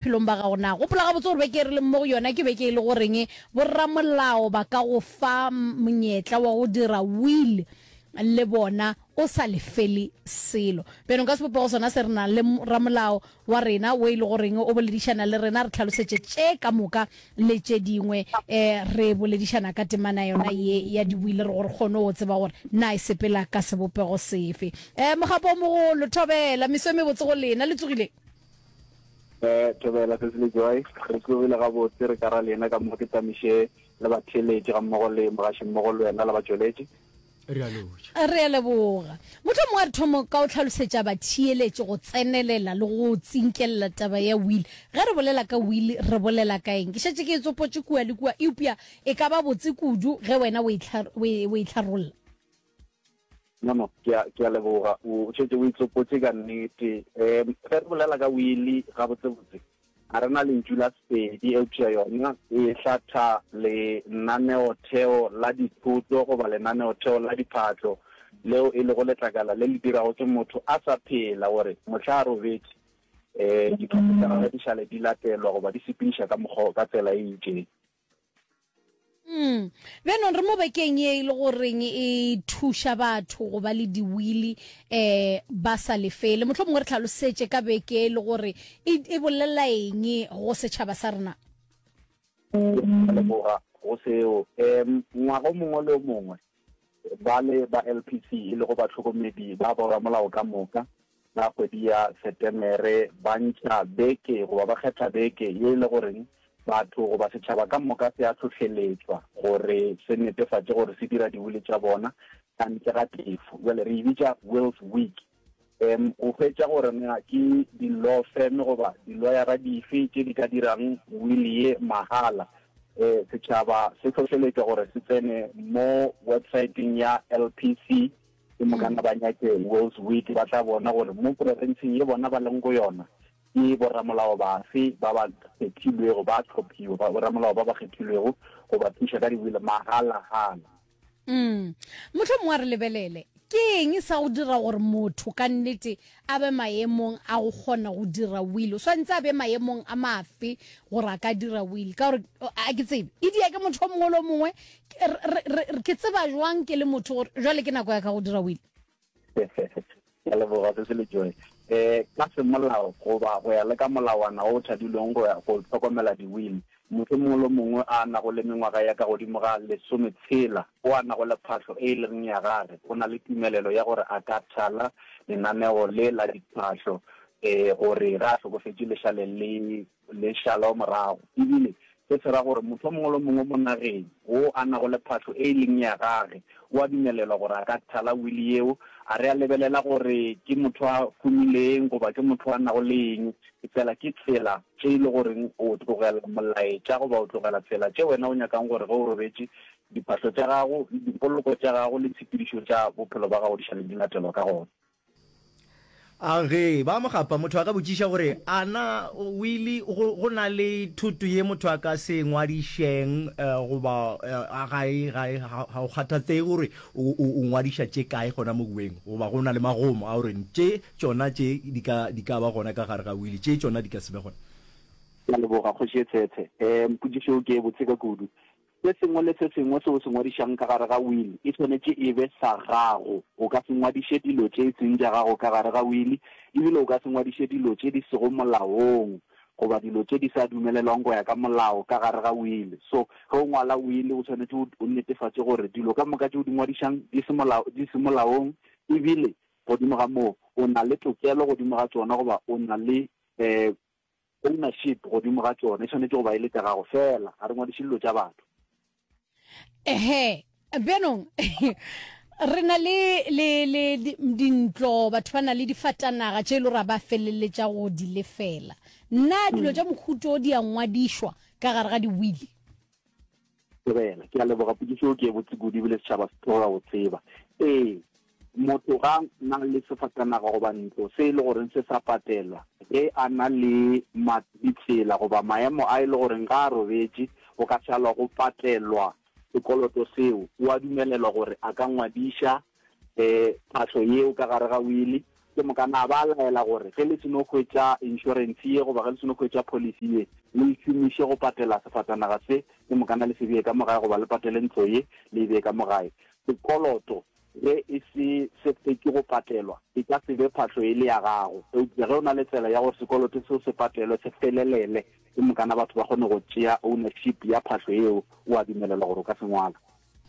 bophelong ba gago. Na gopola gabotse gore beke e re leng mo go yona ke beke e le goreng boramolao ba ka go fa monyetla wa go dira will le bona o sa lefele selo. Bjale nka sebopego sona se re nang le ramolao wa rena wo e le goreng o boledišana le rena re tlhalosetše tše ka moka le tše dingwe um re boledišana ka temana yona ye ya diwile re gore kgone go tseba gore na e sepela ka sebopego sefe. Um mogapo o mogolo thobela meso e mebotse go lena le tsogileng. eh thobela se le joy re tlogile ga botse re ka ra lena ka mo ke tsamiše le ba theletše ga mmogo le mogaši mmogo le wena le ba tšweletše re a lotša re a leboga motho mongwe a re thomo ka o tlhalosetša ba theeletše go tsenelela le go tsinkelela taba ya will ge re bolela ka will re bolela ka eng ke šetše ke e tsopotše kua le kua eupša e ka ba botse kudu ge wena o e tlharolla No, no, ke a, ke a leboga. O šetše o itlopotše ka nnete. Um ge re bolela ka wili, gabotsebotse, ga re na lentšu la Sepedi, eupša yona e hlatha lenaneotheo la dithoto goba lenaneotheo la diphatlo, leo e lego letlakala le le dirago ke motho a sa phela gore mohla a robetše, um diphatlo tša gagwe di šale di latelwa goba di sepedišwa ka mokgwa, ka tsela e itšeng. Mm. Bjanong re mo bekeng ye e le goreng e thuša batho go ba le diwili eh ba sa lefele. Motlho mongwe re tlhalosetše ka beke e le gore e, e bolela eng go setšhaba sa rena. Leboga go seo. Um ngwaga o mongwe le o mongwe ba le ba LPC e lego batlhokomedi ba boramolao ka moka Ka kgwedi ya Setemere ba ntšha beke goba ba kgetha beke ye e le goreng batho goba setšhaba ka moka se a hlohleletšwa gore se netefatše gore se dira diwili tša bona ka ntle ga tefo. Bjale re e bitša Wills Week. Um o hwetša gore na ke di-law firm goba diloyara dife tše di ka dirang wili ye mahala. Um setšhaba se hlohleletšwa gore se tsene mo websaeteng ya LPC. ke mokana ba nyake Will's Wheat ba tla bona gore mo porofenseng ye bona ba leng go yona ke boramolao bafe ba ba kgethilwego ba tlhophiwa ba boramolao ba ba kgethilwego go ba thuša ka diwile magalagala mm. motlho mongwe a re lebelele ke eng sa go dira gore motho ka nnete a be maemong a go kgona go dira will o swantse a be maemong a mafe gore a ka dira will ka gore a ke tsebe e dia ke motho o mongwe le o mongwe ke tseba jwang ke le motho gore jwale ke nako ya ka go dira wile ya leboga se se le joe um ka semolao goba go ya le ka molawana o thadilweng go ya go tlhokomela di-will motho mongwe le mongwe a nago le mengwaga ya ka godimo ga lesome tshela o a nago le phatlho e e leng ya gage o na le tumelelo ya gore a ka thala lenaneo le la diphatlho um gore ga a tlhokofetse lešale le le šala morago, e bile se se ra gore motho yo mongwe le yo mongwe mo nageng wo a nago le phahlo e e leng ya gage o a dumelelwa gore a ka thala wili yeo, a re a lebelela gore ke motho a humileng goba ke motho a nago le eng, efela ke tsela tše e le goreng o tlogela molaetša goba o tlogela tsela tše wena o nyakang gore ge o robetše, diphahlo tša gago, dipoloko tša gago le tshepedišo tša bophelo ba gago di šale di latelwa ka gona. A Ge ba mo gapa, motho a ka botšiša gore, A na, Willie, go, go na le thoto ye motho a ka se ngwadišeng, uh, goba, uh, ga e, ga e, ga, ga o kgathatsege gore o, o, o ngwadiša tše kae gona mo Weng, goba go na le magomo a gore tše, tšona tše di ka, di ka ba gona ka gare ga Willie, tše tšona di ka se be gona? Ke a leboga, Kgoši ye Tshethe. Um, potšišo yeo ke ye botse ka kudu. Se sengwe le se sengwe se o se ngwadišang ka gare ga wili e swanetše e be sa gago. O ka se ngwadiše dilo tše e seng tša gago ka gare ga wili, e bile o ka se ngwadiše dilo tše di sego molaong goba dilo tše di sa dumelelwang go ya ka molao ka gare ga wili. So, ge o ngwala wili o swanetše o netefatše gore dilo ka moka tše o di ngwadišang di se molao, di se molaong e bile godimo ga moo o na le tokelo godimo ga tšona goba o na le um Ownership godimo ga tšona e swanetše go ba e le tša gago feela, ga re ngwadiše dilo tša batho. Ehe, bjanong re na le, le, le di, dintlo, batho ba na le difatanaga tše e le gore ba feleletša go di lefela. Nna dilo hmm. tša mohuto di a ngwadišwa ka gare ga diwili? Sebela, ke a leboga pukiso eo ke e botse kudu ebile setšhaba se tloga go tseba. Ee, motho ga na le sefatanaga goba ntlo se e le goreng se sa patelwa, ge a na le ditsela goba maemo a e le goreng ga a robetše go ka šalwa go patelwa sekoloto seo, o a dumelelwa gore a ka ngwadiša um phahlo yeo ka gare ga wili ke moka na ba laela gore ge le seno hwetša inšorense ye goba ge le seno hwetša policy ye le e šomiše go patela sefatanaga se ke moka na le se bee ka mo gae goba le patele ntlo ye le e bee ka mo gae sekoloto ge e se se fetše go patelwa e ka se be phahlo e le ya gago eupša ge o na le tsela ya gore sekoloto seo se patelwe se felelele ke moka na batho ba kgone go tšea ownership ya phahlo yeo o a dumelelwa gore o ka se ngwala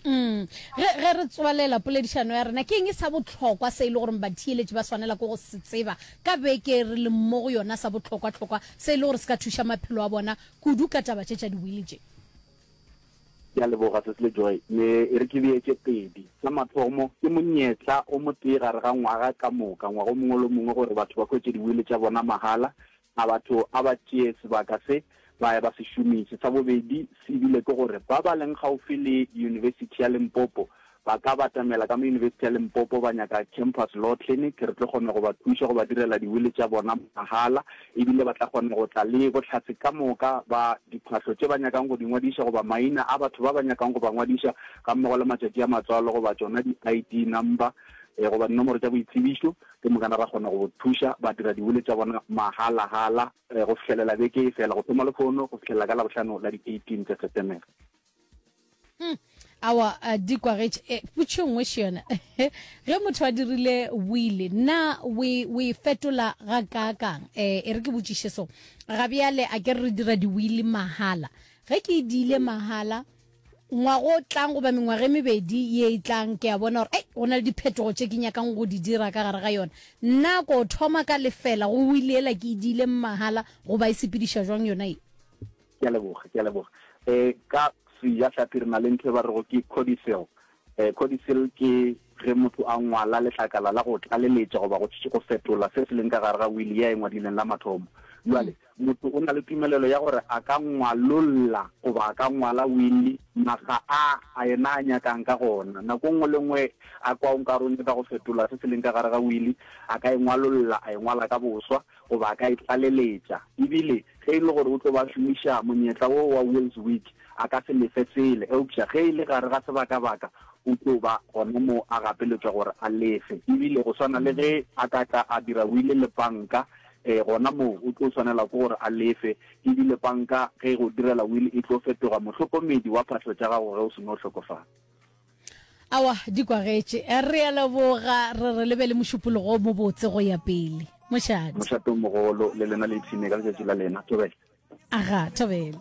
Mm. Ge, ge re tswalela poledišano ya rena ke eng e sa bohlokwa se e le gore batheeletši ba swanela ke go se tseba ka beke re le mo go yona sa bohlokwa-hlokwa se e le gore se ka thuša maphelo a bona kudu ka taba tše tša diwili tše? Ke a leboga se sele Joy, me e re ke bee tše pedi. Sa mathomo, ke monyetla o motee gare ga ngwaga ka moka, ngwaga o mongwe le o mongwe gore batho ba hwetše diwili tša bona mahala. A batho a ba tšee sebaka se ba ya ba se šomiše? Sa bobedi se e bile ke gore ba ba leng gaufi le Yunibesithi ya Limpopo ba ka batamela ka mo Yunibesithi ya Limpopo ba nyaka Campus Law Clinic. Re tlo kgona go ba thuša go ba direla diwili tša bona mahala e bile ba tla kgona go tla le bohlatse ka moka ba diphahlo tše ba nyakang go di ngwadiša goba maina a batho ba ba nyakang go ba ngwadiša gammogo le matšatši a matswalo goba tšona di-ID number goba dinomoro tša boitsebišo. Ke mokana ra kgona go bo thuša ba dira diwili tša bona mahala-hala go fihlelela beke e fela, go thoma Lekgono go fihlelela ka Labohlano la di 18 tša Setemere. Hum, awa uh, di kwagetše. Eh, putšo nngwe še yona. Ge motho a dirile wili, na o e o e fetola ga kaakang? Eh, e re ke botšiše so. Ga bjale a ke re re dira diwili mahala. Ge ke e diile mahala, ngwaga o tlang goba mengwaga e mebedi ye e tlang ke a bona gore ei go na le diphetogo tše ke nyakang go di dira ka gare ga yona nna ko thoma ka lefela go wili ela ke e diile mmahala goba e sepediša jwang yona e ke a leboga ke a leboga um ka sejatlhapi re na le ntho e ba rego ke codicil Codicil ke ge motho a ngwala letlakala la go tlaleletša goba go go fetola se se leng ka gare ga wili ya e ngwadileng la mathomo. Bjale, motho o na le tumelelo ya gore a ka ngwalolla goba a ka ngwala wili maga a a yena a nyakang ka gona. Nako e nngwe le e nngwe a kwa o nka re o nyaka go fetola se se leng ka gare ga wili, a ka e ngwalolla, a e ngwala ka boswa goba a ka e tlaleletša. E bile ge e le gore o tlo ba a šomiša monyetla wo wa Wills Wiki, a ka se lefe sele, eupša ge e le gare ga sebakabaka, o tlo ba gona moo a gapeletšwa gore a lefe. E bile go swana le ge a ka tla a dira wile le panka, ee, gona moo o tlo swanelwa ke gore a lefe. E bile panka ge e go direla wile e tlo fetoga mohlokomedi wa phahlo tša gago ge o se no hlokofala. Aowa, di kwagetše. Re a leboga, re re le be le mošupologo o mobotse go ya pele. Mošate. Mošate o mogolo, le lena le ipshine ka letšatši la lena. Thobela. Aga, thobela.